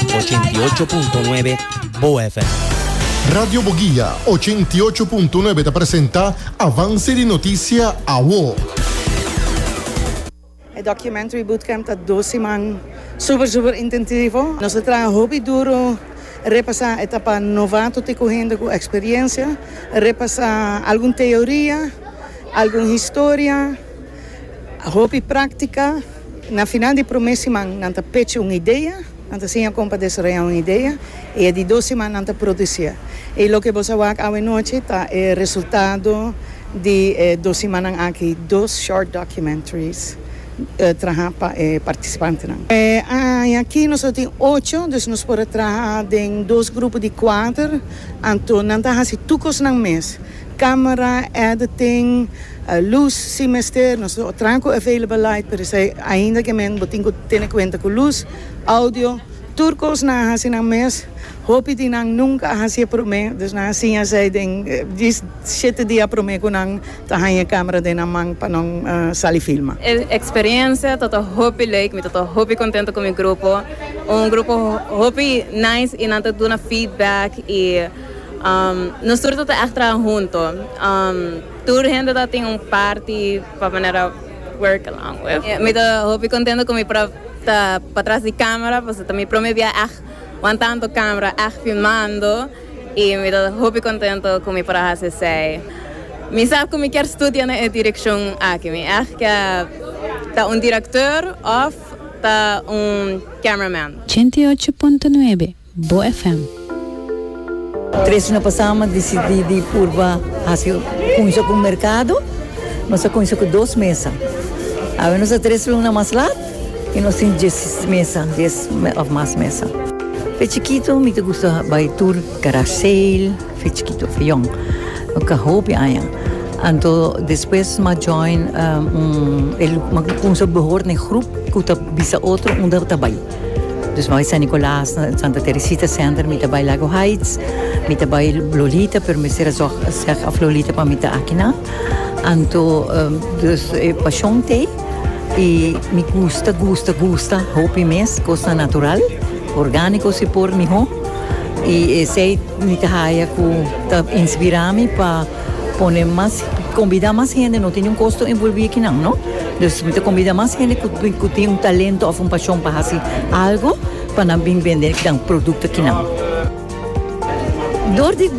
88.9 Boa FM. Radio Boguia, 88.9 ta presenta Avance di Noticia Awo. E Documentary Bootcamp ta dos siman super super intentivo. Nos a traha hopi duro repasa etapa novato te cu hende cu experiencia, repasa algun teoria, algun historia, hopi practica. Na final di promé siman nan ta pechi un idea, nan ta siña kon pa desarroyá un idea i e di dos siman nan ta produsié. I loke bo sa wak awenochi ta e resultado di e dos simannan aki, dos short documentaries trahá pa e partisipantenan. E aña aki nos lo tin ocho, dus nos por a traha den dos grupo di kuater, anto nan ta hasi tur kosnan mes. Camera, editing, luz si mester, nos traha cu available light pero esey ainda que men bo tin cu tene cuenta cu luz, audio, tur cos nan a haci nan mes, hopi di nan nunca a haci'e prome, dus nan a siña esey den di shete dia prome cu nan ta haña e camera den nan man pa nan sali filma. E experiencia tata hopi leek, mi tata hopi contento cu mi grupo, un grupo hopi nice y nan ta duna feedback y. Nos tur ta ta ègt traha huntu. Tur hende ta tin un parti pa manera work along with. Mi ta hopi kontento ku mi por a ta patras di kamera pasobra ta mi prome bia ègt wan tantu kamera ègt filmando i mi ta hopi kontento ku mi por a hasi esei. Mi sa ku mi kier studia na e direkshon aki. Mi ègt kier ta un direktor òf ta un cameraman. Ochenta i ocho punto nuebe. Bo FM. Tres hora pasá mi a disidí di purba hasi kunsha ku merkado. Nos a kunsha ku dos mesa. Awe nos ta tres luna mas lat i nos tin dies mesa, dies òf mas mesa. Fe chikitu mi ta gusta bai tur garage sale, fe chikitu, fe yòn. Mi ka hopi aña. Anto despues mi a join un, mi a kunsha behor na e grup ku ta bisa otro unda ta bai. Dus nos a San Nicolas na Santa Teresita Center, mi ta bai Lago Heights, mi ta bai Lolita, pero mester a zorg seg of Lolita pa mi ta aki nan. Anto, dus e pasion t'e, i mi gusta, gusta, gusta hopi mes cosnan natural, organico si por miho, i esey mi ta haya cu ta inspira mi pa pone mas, combida mas hende, no tin niun costo envolvi aki nan, no. Nos mester combida mas hende cu tin un talento of un pasion pa haci algo pa nan bin bende nan producto kinan. Door di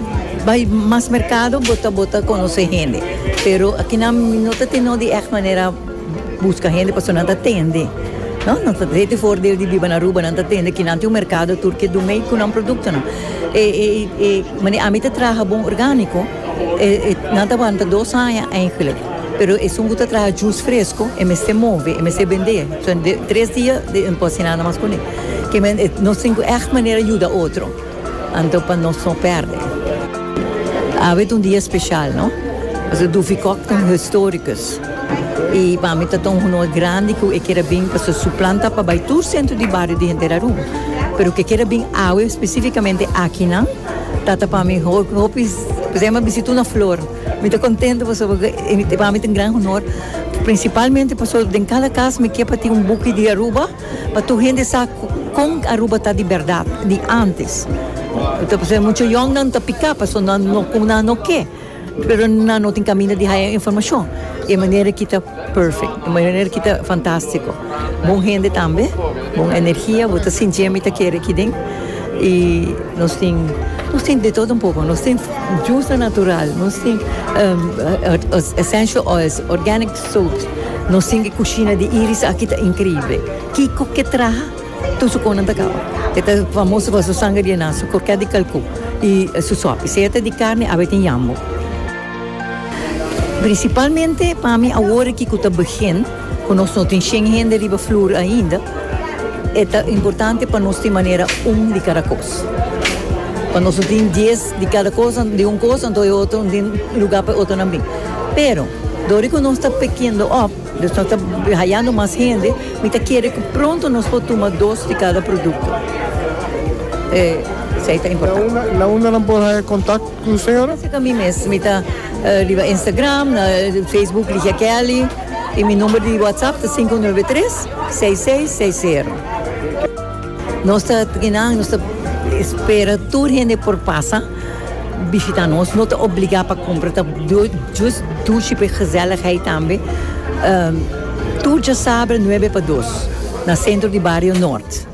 bay mas mercado bo ta bo ta conoce hende pero kinan no ta tin no di echt manera busca hende pasobra nan ta tende no nan ta hete voordeel di biba na Aruba nan ta tende kinan tin un mercado tur ke do mey cu nan productonan e e mane ami ta traha bon organico e nan ta wanta dos aña. Pero esun ku ta traha jus fresko e mester move, e mester bendé. So de tres dia e no por hasi nada mas kuné. Nos tin ku ègt manera yuda otro anto pa nos no pèrdè. Awe ta un dia speshal, no? Pasobra Duffy Cock ta un historikus. I pa mi tabata un honor grandi ku e keda bin pasobra su plan ta pa bai tur sentro di bario di henter Aruba. Pero ku e keda bin awe spesifikamente akinan tabata pa mi hopi, kusai? Bisituna flor. Mi ta contento pasobra cu e pa mi ta un gran honor, principalmente pasobra den cada cas mi kier pa tin un buki di Aruba pa tur hende sa con Aruba ta di berdad, di antes. Ta pasaba mucho yongnan ta pica pasobra nan no cu nan no ke, pero nan no tin caminda di haya informacion. E manera aki ta perfect, e manera aki ta fantastico. Bon hende tambe, bon energia, bo ta sinti mi ta kere aki den y nos tin nos tin de todo un poco, nos tin jusa natural, nos tin essential oils, organic soaps, nos tin e cushina di Iris aki ta increible, kico ke traha tur su conan ta caba, e ta famoso pa su sangre di enan, su croquet di calcou y su sopi, sea ta di carne, awe tin yambo. Principalmente pa mi awor aki cu ta begin cu nos no tin shen hende riba floor ainda e ta importante pa nos tin manera un di cada cos. Pa nos no tin dies di cada cos di un cos anto e otro no tin lugar pa e otronan bin. Pero dor di cu nos ta pickindo op nos ta hayando mas hende mi ta kere cu pronto nos por tuma dos di cada producto. Esey ta importante. Na unda nan por haya contact? Hm señora. Lo seka mi mes mi ta riba Instagram, na Facebook Ligia Kelly y mi number di WhatsApp ta sinku nuebe tres seis seis seis sero. Nos ta kinan nos ta espera tur hende por pasa bishita nos no ta obliga pa kumpra ta jus dushi pa e gezelligheid tambe tur djasabre nuebe pa dos na sentro di bario Noord.